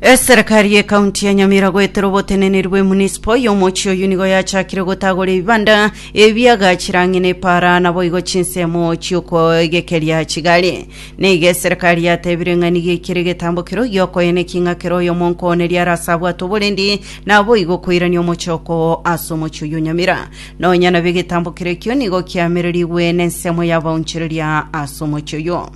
Eserekari y'ekaunti ya Nyamira goetera oboteneneri bw'emunisipo y'omochie oyio nigo yachakire gotagora ebibanda ebiagachire ang'e n'epaara naboigo chinsemo chi'okoegekeria chigari. Neiga eserekari yatebire ng'a nigo ekere egetambo kerio giokoyena eking'a kere oyomonkooneria are ase abwate oborendi naboigo koirania omochoko oo ase omochie oyio Nyamira. Nonya nabwo egetambo kere ekio nigo kiamererigwe nensemo y'abaonchoreria ase omochie oyio.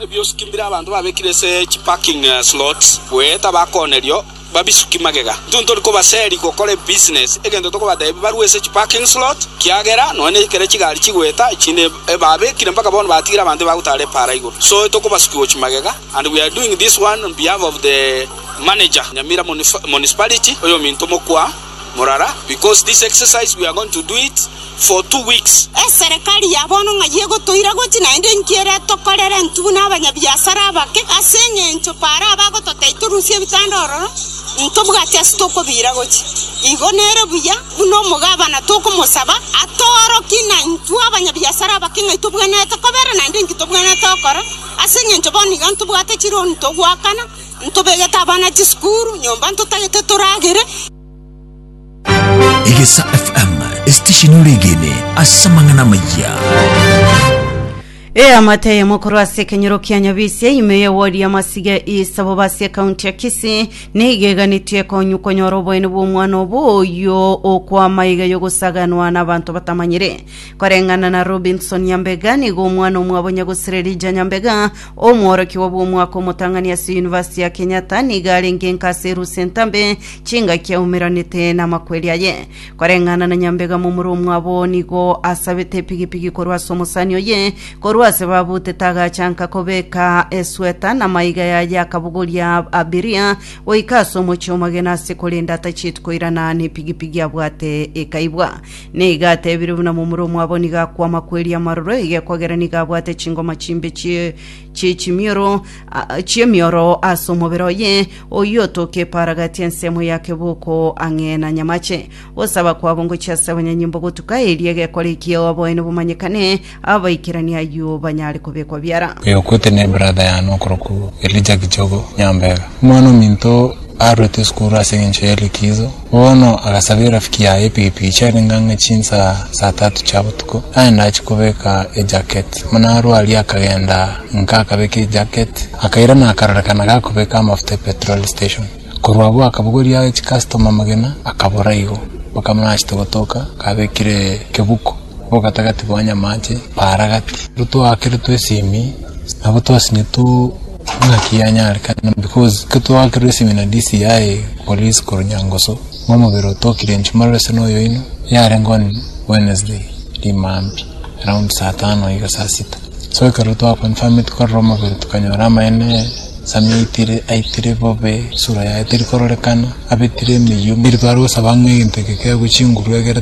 Ebiosuki mbire abanto babekire ase chi parking slots goeta bakoonerio babisuki magega. Intwe ntori kobaseri gokora ebusiness egento tokobatebi barue ase chi parking slot kiagera nonya nekero chigari chigoeta chinde ebabekire mpaka bono batigire abanto ebagotara epaara igoro so etokobasuki gochi magega and we are doing this one on behalf of the manager Nyamira municipality oyominto mokwa Morara, because this exercise we are going to do it for two weeks. Eserekari ya bono ng'ai egotoira gochi naende inki ere tokorere intwe buna abanyabiasara abake? Ase engencho Paro abagototebi torusie ebitanda ororo, intobwati ase tokobiira gochi. Igo nere buya buna omogabana tokomosaba atoorokie na intwe abanyabiasara abake ng'ai tobwenerete kobera naende inki tobwenerete gokora, ase engencho bono iga ntobwate chironi togoakana. Ntobegete abana chisukuru, nyomba ntotagete toragere. Egesa FM, esitesheni oregene ase amang'ana amayia. eamate eyemo korwa ase ekenyoro kia nyabisia ime ye wodi ya masiga east aboba ase ekaunti ya kisii nigo eganetwe konyu konyora oboene bw'omwana obo oyo okwama iga yogosaganwa n'abanto batamanyire koreng'ana na robinson nyambega nigo omwana omwabo nyagosirerija nyambega Omworokigwa bw'omwaka omotang'ani ase University ya Kenyatta nigo arenge nka ase erusa entambe, chingaki aumeranete namakweri aye. Koreng'ana na nyambega momura omwabo nigo asabete epigipigi korwa ase omosani oye, korwa ase babutete agacha nka kobeka esweta na maiga yaye akabogoria abiria goika ase omochie omogeni ase korenda atacheti koirana nepigipigi abwate ekaibwa. Nigo atebirie buna momura omwabo nigo akwa amakweri amaroro egekwa gere nigo abwate chingoma chimbe chie chie chimioro a- a- chi'emioro ase omobere oye, oyio otoke eparagati ensemo ya keboko ang'e na nyamache. Gosaba kwabo ngochia ase abanyanyimbo gotuka, erio egekwa rikia oboene bomanyekane, Abaikerania ayio banyare kobekwa biara. Oyo okwete ne brother yane okoroku Elijah Kichogo Nyambega. Omwana ominto arurete esukuru ase engencho ye likizo, bono agasaba erafiki yaye epikipiki chiarenge ang'e chinsaa saa tatu chia botuko, aende achie kobeka ejacket. Buna arwa aria akagenda inka akabeka ejacket, akairana akarorekana gakobeka amafuta epetrol station. Korwa abwo akabogoria age chicustoma amagena akabora igo, mpaka buna achete gotoka kabekire kebuko. Ogatagati bwa nyamache baara gati, nigo twakerotwe esimi, nabo twasinyetwe ng'aki yanyarekana because ekero twakerwa esimi na DCI police korwa Nyangoso, nigo omobere oto okirentwe maroro ase na oyoino, yarenge on Wednesday rimambia around saa tano iga saa sita, so ekero twa confirm tikorora omobere tokanyora amaene, Sammy aitire, aitire bobe, esura yaye terikorokana, abetire emeyia, omobere tware gosaba ng'a egento eke kegwe chinguru egere.